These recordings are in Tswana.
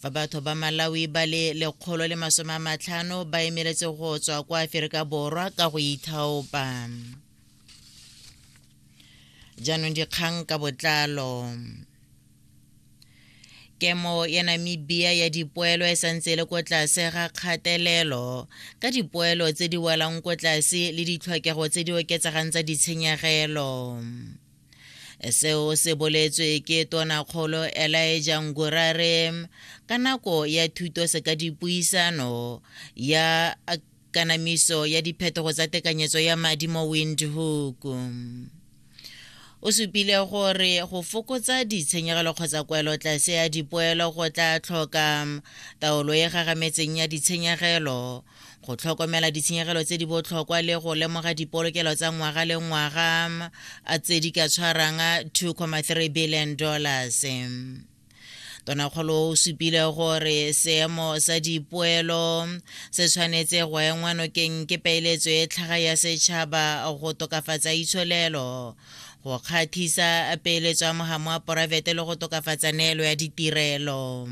fa batho ba malawi ba le lekgolo le masome a matlhano ba emeletse go tswa kwa aferika borwa ka go ithaopa jaanong dikgang ka botlalo kemo ya namibia ya dipoelo e santse e le ko tlase ga kgatelelo ka dipoelo tse di welang ko tlase le ditlhokego tse di oketsegang tsa ditshenyegelo seo se boletswe ke tonakgolo elaeja ngurare ka nako ya thuto se ka dipuisano ya kanamiso ya diphetogo tsa tekanyetso ya madi mo windhoek o supile gore go fokotsa ditshenyegelo kgotsa kwelo tlase ya dipoelo go tla tlhoka taolo e gagametseng ya ditshenyegelo go tlhokomela ditshenyegelo tse di botlhokwa le go lemoga dipolokelo tsa ngwaga le ngwaga a tse di ka tshwarang 2,3 billion dollars tonakgolo o supile gore seemo sa dipoelo se tshwanetse go engwa nokeng ke peeletso e tlhaga ya setšhaba go tokafatsa itsholelo go kgathisa peeletso ya mogamo wa poraefete le go tokafatsa neelo ya ditirelo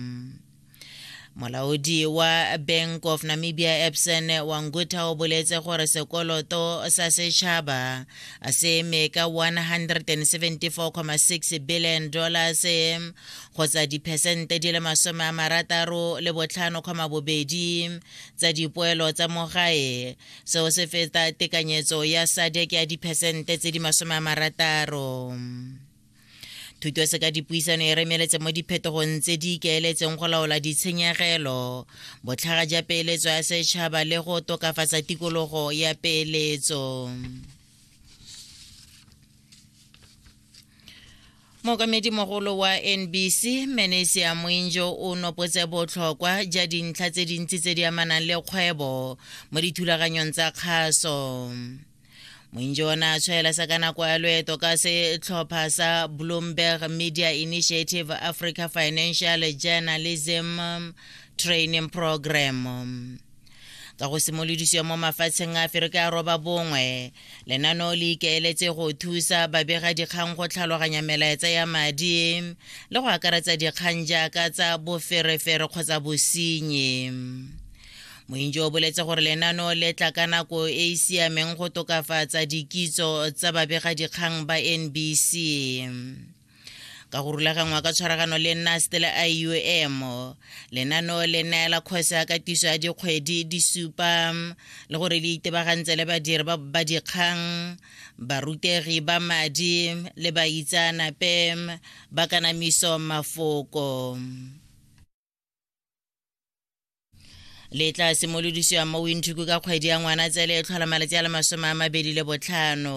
molaodi wa bank of namibia epson wa ngutha o boletse gore sekoloto sa setšhaba se eme ka 174,6 billion dollars kgotsa diphesente di le masome a marataro le botlhano kgoma bobedi tsa dipoelo tsa mogae seo se feta tekanyetso ya sadek ya diphesente tse di masome a marataro thuto se ka dipuisano e remeletse mo diphetogong tse di ikaeletseng go laola ditshenyegelo botlhaga ja peeletso ya setšhaba le go tokafatsa tikologo ya peeletso mokamedi mogolo wa nbc manesia moinjo o nopotse botlhokwa ja dintlha tse dintsi tse di amanang le kgwebo mo dithulaganyong tsa kgaso mointšona a tshwaela sa ka nako ya loeto ka setlhopha sa bloomberg media initiative africa financial journalism training program ka go simolodisiwa mo mafatsheng a fereke a roba bongwe lenaneo le ikaeletse go thusa babega dikgang go tlhaloganya melaetsa ya madi le go akaretsa dikgang jaaka tsa boferefere kgotsa bosenyi mointši o boletse gore lenano le tla ka nako e e siameng go tokafatsa dikitso tsa babegadikgang ba nbc ka go rulaganngwa ka tshwaragano le nast le iom lenano le neela kgosi ya katiso ya dikgwedi di supa le gore le itebagantse le badiri ba dikgang barutegi ba madi le baitsanape ba kanamiso mafoko le tla simolodisiwa mo winthuku ka kgwedi ya ngwana tsele e tlhola malatsi a le masome a mabedi le botlhano